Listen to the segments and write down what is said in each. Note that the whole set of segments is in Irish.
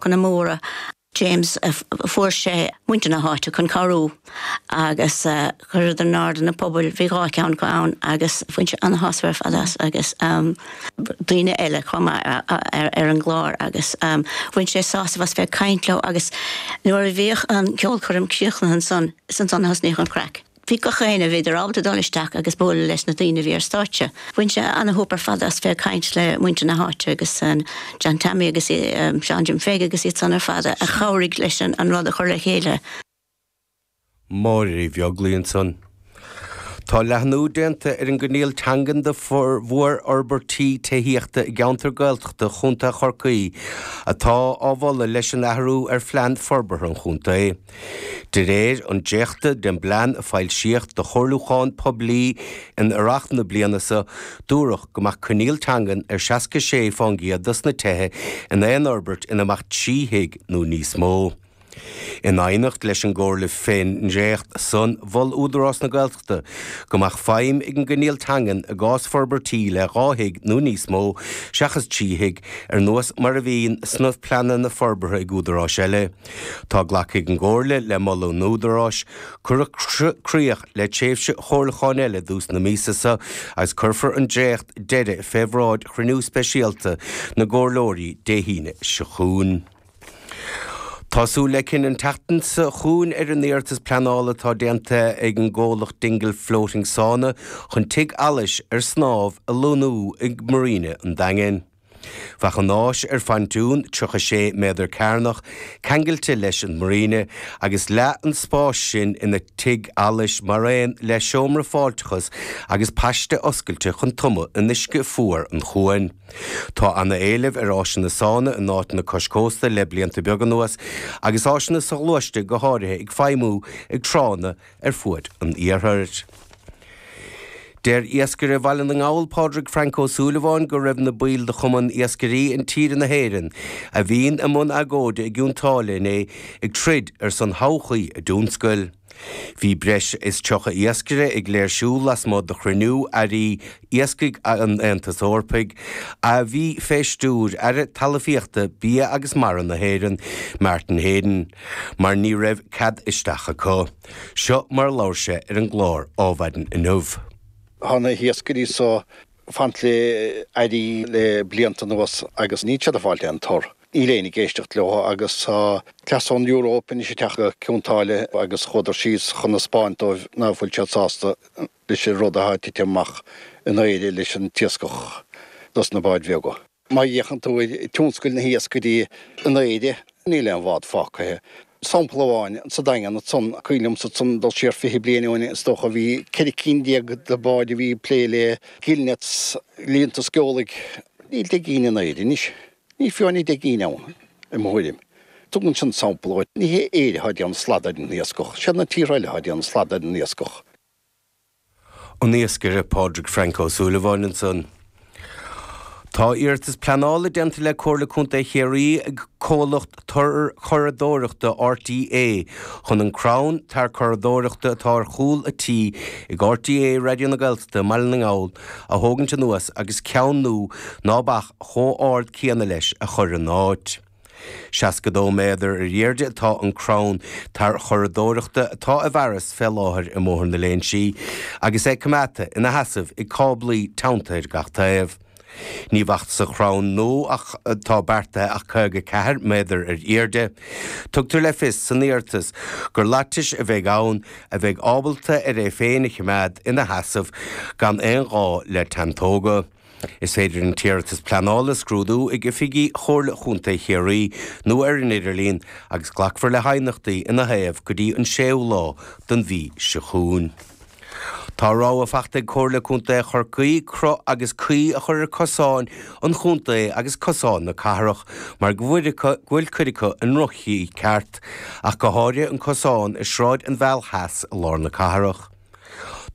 Chan Móra, James, fuair sé muintir na háite chun cabhrú agus cuireadar in airde na pubaill, bhí dhá cheann acu ann agus bhain sé an-shásamh ar fad as agus daoine eile chomh maith ar an gclár agus bhain sé sásamh as bheith ag caint leo agus nuair a bhíodh an ceolchoirm críochnaithe ansan is ansan a thosnaíodh an chraic. Bhí gach éinne, bhíodar ábalta dul isteach agus bualadh leis na daoine a bhí ar stáitse. Bhain sé ana-shúp ar fad as bheith ag caint le muintir na háite agus John Teaimí agus Seán Jim Pheig agus iad san ar fad a chabhraigh leis an rud a chur le chéile. Máire Uí Bheaglaoi ansan. Tá leathnú déanta ar an gcoinníoll teangan do mhór fhorbairtí tithíochta i gceantar Gaeltachta Chontae Chorcaí atá á mholadh leis an athrú ar Phlean Forbartha an Chontae. De réir an dréachta den bplean a foilsíodh do chomhairliúchán poiblí in earrach na bliana seo, dúradh go mbeadh coinníoll teangan ar 66 fán gcéad dos na tithe in aon fhorbairt ina mbeadh trí thigh nó níos mó. In aighneacht leis an gcomhairle fén ndréacht san, mhol Údarás na Gaeltachta go mbeadh feidhm ag an gcoinníoll teangan i gcás forbairtí le dhá thigh nó níos mó, seachas trí thigh, ar nós mar a bhíonn sna pleananna forbartha ag údaráis eile. Tá glactha ag an gComhairle le moladh an Údaráis. Cuireadh críoch le tréimhse chomhairliúcháin eile i dtús na míosa seo agus cuirfear an dréacht deiridh fé bhráid chruinniú speisialta na gComhairleoirí Dé hAoine seo chugainn. Tá súil le cinneadh an tseachtain seo chugainn ar an iarratas pleanála atá déanta ag an gcomhlacht Dingle Floating Sauna chun tigh allais ar snámh a lonnú ag Marina an Daingin. Bheadh an áis ar phontún 36 méadar cearnach ceangailte leis an Marina agus leath an spáis sin ina tigh allais maraon le seomra fáilteachas agus paiste oscailte chun tumadh in uisce fuar an chuain. Tá ana éileamh ar áiseanna sána in áiteanna cois cósta le blianta beaga anuas agus áiseanna soghluaiste go háirithe ag feidhmiú ag tránna ar fuaid an iarthair. Deir iascaire Bhaile na nGall Pádraig Frank Ó Súilleabháin go raibh na baill de Chumann Iascairí Intíre na hÉireann a bhí i mbun agóide i gCionn tSáile inné ag troid ar son thodhchaí a dtionscail. Bhí breis is 30 iascaire ag léirsiú lasmuigh de chruinniú Airí Iascaigh an Aontais Eorpaigh, a bhí fé stiúir Aire Talamhaíochta, Bia agus Mara na hÉireann, Martin Heydon, mar ní raibh cead isteach acu. Seo mar a labhair sé ar an gclár Adhmhaidin inniu. Tá na hiascairí so ag caint le Airí le blianta anuas agus níl siad ag fáilt aon tor. Níl éinne ag éisteacht leo agus tá cleas na Euróip anois ag teacht go Cionn tSáile agus chuadar síos chun a spáint dóibh ná fuil siad sásta leis an rud athá ag titim amach in Éirinn leis an t-iascach dos na báid bheaga. Má fhéachann tú ar tionscail na h-iascaigh in Éirinn níl aon bhád fágtha. Sampla amháin, sa Daingean ansan, cuimhin liomsa ansan dul siar fiche bliain ó shin is dócha, bhí ceithre cinn déag de bháid a bhí ag plé le gill nets, líonta sceolaigh. Níl deich gcinn in Éirinn anois. Níl fiú aon deich gcinn ann, i mo thuairim. Tugann sin sampla dhuit. Ní h-Éire athá déanamh slad ar an iascach. Siad na tíortha eile athá déanamh slad ar an iascach. an iascaire Pádraig Frank Ó Súilleabháin ansan. Tá iarratas pleanála déanta le Comhairle Contae Chiarraí ag comhlacht tarchuradóireachta RTÉ chun an crann tarchuradóireachta atá ar chúl an tí ag RTÉ Raidió na Gaeltachta i mBaile na nGall a thógaint anuas agus ceann nua ná beadh chomh ard céanna leis a chur ina áit. Seasca-dó méadar ar aoirde atá an crann tarchuradóireachta atá i bhfearas fé láthair i mBóthar na Léinsí agus é coimeádta ina sheasamh ag cáblaí teannta ar gach taobh. Ní bheadh sa chrann nua atá beartaithe ach caoga ceathair méadar ar aoirde. Tugtar le fios san iarratas gur laitis a bheidh ann a bheidh ábalta ar é féin a choimeád ina sheasamh gan aon ghá le teanntóga. Is féidir an t-iarratas pleanála a scrúdú ag oifigí Chomhairle Chontae Chiarraí nó ar an idirlíon agus glacfar le haighneachtaí ina thaobh go dtí an 6ú lá den mhí seo chugainn. Tá rabhadh fachta ag Comhairle Contae Chorcaí cruth agus caoi a chur ar cosáin an chontae agus cosáin na cathrach mar go bhfuil cuid acu i ndroch-chaoi ceart, ach go háirithe an cosán i Sráid an Mheal Theas i lár na cathrach.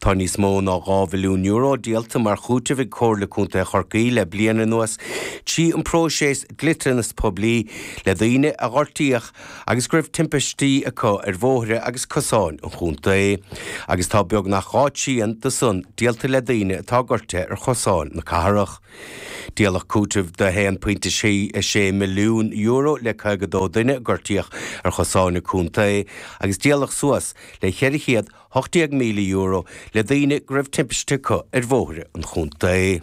Tá níos mó ná €2 mhilliún díolta mar chúiteamh ag Comhairle Contae Chorcaí le bliain anuas trí an próiseas dliteanas poiblí le daoine a gortaíodh agus go raibh timpistí acu ar bhóithre agus cosáin an chontae agus tá beagnach dhá thrian do san díolta le daoine a gortaíodh ar chosáin na cathrach. Díoladh cúiteamh de €1.66 milliún le 52 duine a gortaíodh ar chosáin an chontae agus díoladh suas le 400 €18,000 le daoine go raibh timpiste acu ar bhóithre an chontae.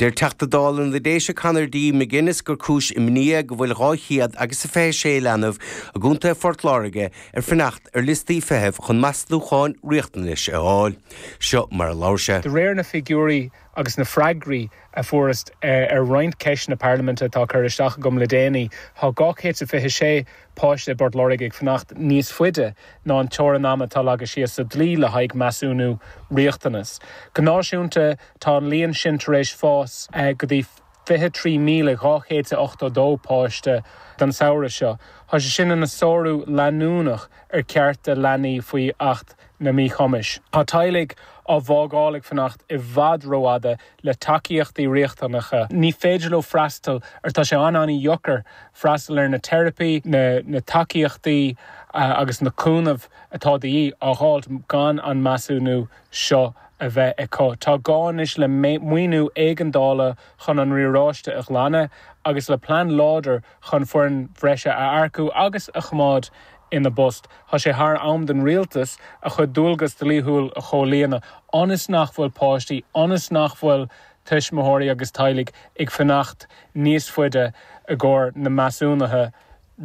Deir Teachta Dála na Déise Conor D McGuinness gur cúis imní é go bhfuil dhá chéad agus a fiche sé leanbh i gContae Phort Láirge ag fanacht ar liostaí feithimh chun measnúcháin riachtanais a fháil. Seo mar a labhair sé. De réir na figiúirí agus na freagraí a fuaireas ar roinnt ceisteanna parlaiminte atá curtha isteach agam le déanaí, tá dhá chéad 's a fiche sé páiste i bPort Láirge ag fanacht níos faide ná an teorainn ama atá leagtha síos sa dlí le haghaidh measúnú riachtanas. Go náisiúnta, tá an líon sin tar éis fás go dtí 23,282 páiste don samhradh seo. Tá sé sin ina sárú leanúnach ar chearta leanaí faoi Acht an Mhíchumais. Tá teaghlaigh á bhfágáil ag fanacht i bhfad rófhada le tacaíochtaí riachtanacha. Ní féidir leo freastal ar tá sé ana-ana-dheocair freastal ar na teiripí, na tacaíochtaí agus na cúnamh atá de dhíth a dh'fháilt gan an measúnú seo a bheith acu. Tá gá anois le maoiniú éigeandála chun an riaráiste a ghlanadh agus le plean láidir chun foireann bhreise a earcú agus a choimeád ina bpost. Tá sé thar am don rialtas a chuid dualgas dlíthiúil a chomhlíonadh ionas nach bhfuil páistí, ionas nach bhfuil tuismitheoirí agus teaghlaigh ag fanacht níos faide i gcomhair na measúnuithe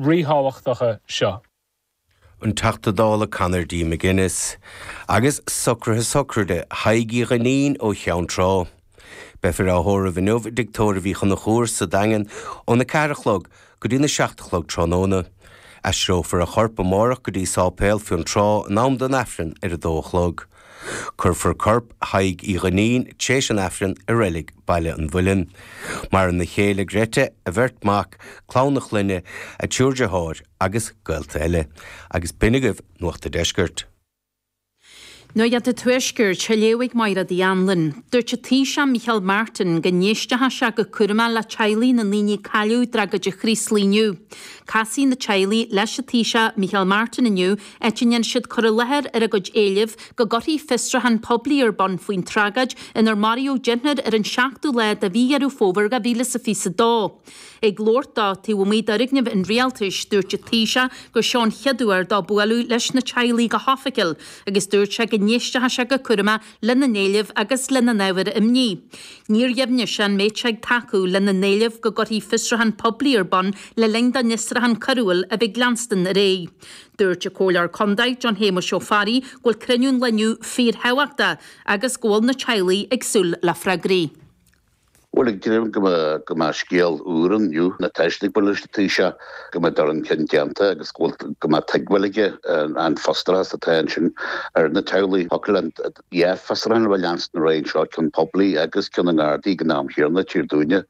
ríthábhachtacha seo. an Teachta Dála Conor D. McGuinness, agus socruithe sochraide Thaidhg Uí Dhuinnín ó Cheann Trá. Beifear á thórramh inniu i dTigh Tóraigh Uí Chonchúir sa Daingean ón 4 a chlog go dtí na 7 a chlog tráthnóna. Aistreofar a chorp amárach go dtí Séipéal Fionntrá in am don Aifreann ar a 2 a chlog. Cuirfear corp Thaidhg Uí Dhuinnín tréis an Aifrinn i reilig Baile an Mhuilinn. Maireann a chéile Gretta, a bheirt mhac, clann a chlainne, a triúr deartháir agus gaolta eile. Agus b'shin agaibh Nuacht a' Deiscirt. Nuacht a' Tuaiscirt, á léamh ag Máire de hAnluain. Dúirt an Taoiseach Micheál Martin go n-éistfeadh sé go cúramach le teaghlaigh na ndaoine a cailleadh i dtragóid an Chraoslaigh inniu. Casfaidh na teaghlaigh leis an Taoiseach Micheál Martin inniu Le tréan siad cur i láthair ar a gcuid éileamh go gcuirfí fiosrúchán poiblí ar bun faoin tragóid inar maraíodh deichniúr ar an seachtú lá de mhí Dheireadh Fómhair 2022. Ag labhairt dó taobh amuigh d'fhoirgneamh an Rialtais, dúirt an Taoiseach gur seo an chéad uair dó bualadh leis na teaghlaigh go hoifigiúil agus dúirt sé go n-éistfeadh sé go cúramach lena n-éilimh agus lena n-ábhair imní. Níor dheimhnigh sé an mbeadh sé ag tacú lena n-éileamh go gcuirfí fiosrúchán poiblí ar bun le linn don fhiosrúchán coiriúil a bheith ag leanstan ar aghaidh. Dúirt an Comhairleoir Condae, John Shéamuis Ó Fearraigh, go bhfuil cruinniú an lae inniu fíorthábhachtach agus go bhfuil na teaghlaigh ag súil le freagraí. Bhuel, ag dréim go mbeidh scéal úr inniu, i ndiaidh daofa bualadh leis an Taoiseach, go mbeidh dul chun cinn déanta agus go bhfuil, go mbeidh tuigbheáil aige ar an frustrachas atá ansin ar na teaghlaigh. Thig leis an dá fhiosrúchán a bheith ag leanstan ar aghaidh anseo, ceann poiblí agus ceann na nGardaí ag an am chéanna, i dtíortha eile,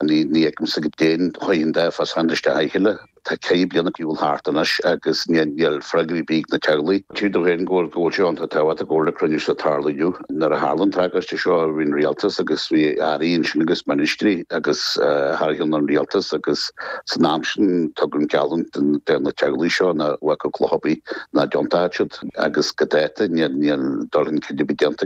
ní fheicimse go dtéann an dá fhiosrúchán isteach ina chéile. Tá ceithre bliana ag gabháil thart anois agus níl freagraí ar bith ag na teaghlaigh. Tchítear domh féin go bhfuil sé iontach tábhachtach go bhfuil an cruinniú seo ag tarlú inniu. Nuair a tharla an tragóid seo bhí an Rialtas agus bhí Airí ansin agus ministrí agus thar ceann an Rialtais agus san am sin tugadh geallúint do na teaghlaigh seo nach mbeadh cloch ar bith nach dtiontódh siad agus go dáta níl níl dul chun cinn ar bith déanta.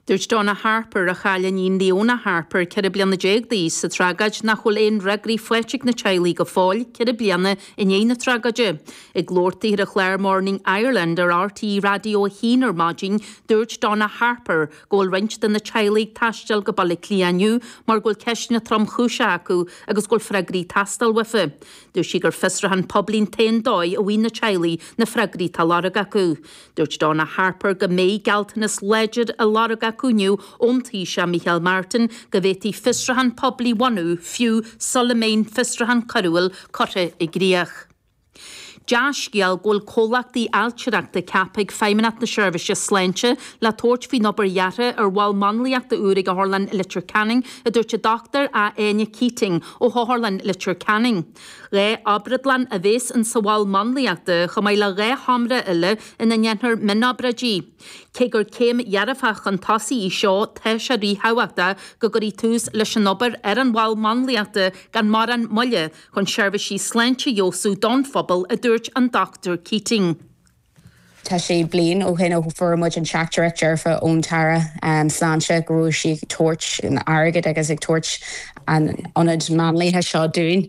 Dúirt Donna Harper, a chaill a hiníon Leona Harper, ceithre bliana déag d'aois, sa tragóid nach bhfuil aon fhreagraí faighte ag na teaghlaigh go fóill, ceithre bliana i ndiaidh na tragóide. Ag labhairt daoithe ar an chlár Morning Ireland ar RTÉ Raidió a hAon ar maidin, dúirt Donna Harper go bhfuil roinnt de na teaghlaigh ag taisteal go Baile Átha Cliath inniu mar go bhfuil ceisteanna tromchúiseacha acu agus go bhfuil freagraí ag teastáil uafa. Dúirt sí gur fiosruchán poiblí an t-aon dóigh a bhfaighidh na teaghlaigh na freagraí atá á lorg acu. Dúirt Donna Harper go mbeidh gealltanas láidir á lorg acu inniu ón Taoiseach Micheál Martin go bhféadfaí fiosruchán poiblí a bhunú fiú sula mbeidh an fiosruchán coiriúil curtha i gcríoch. Dea-scéal go bhfuil comhlachtaí ailtireachta ceaptha ag Feidhmeannacht na Seirbhíse Sláinte le tabhairt faoin obair dheartha ar mhol máinliachta úr ag Otharlann Leitir Ceanainn, a dúirt an Dochtúir Áine Keating ó hOtharlann Leitir Ceanainn. Dhá obrádlann a bhéas in sa mhol máinliachta chomh maith le dhá sheomra eile ina ndéanfar mionobráidí. Cé gur céim dhearfach chun tosaigh í seo tá sé ríthábhachtach go gcuirfí tús leis an obair ar an mhol máinliachta gan mórán moille chun seirbhísí sláinte a fheabhsú don phobal a dúirt an Dr Keating. Tá sé bliain ó shin ó fuair muid an teachtaireacht dearfa ón tAire Sláinte go raibh sí ag tabhairt airgid agus ag tabhairt an ionaid máinliachta seo dúinn.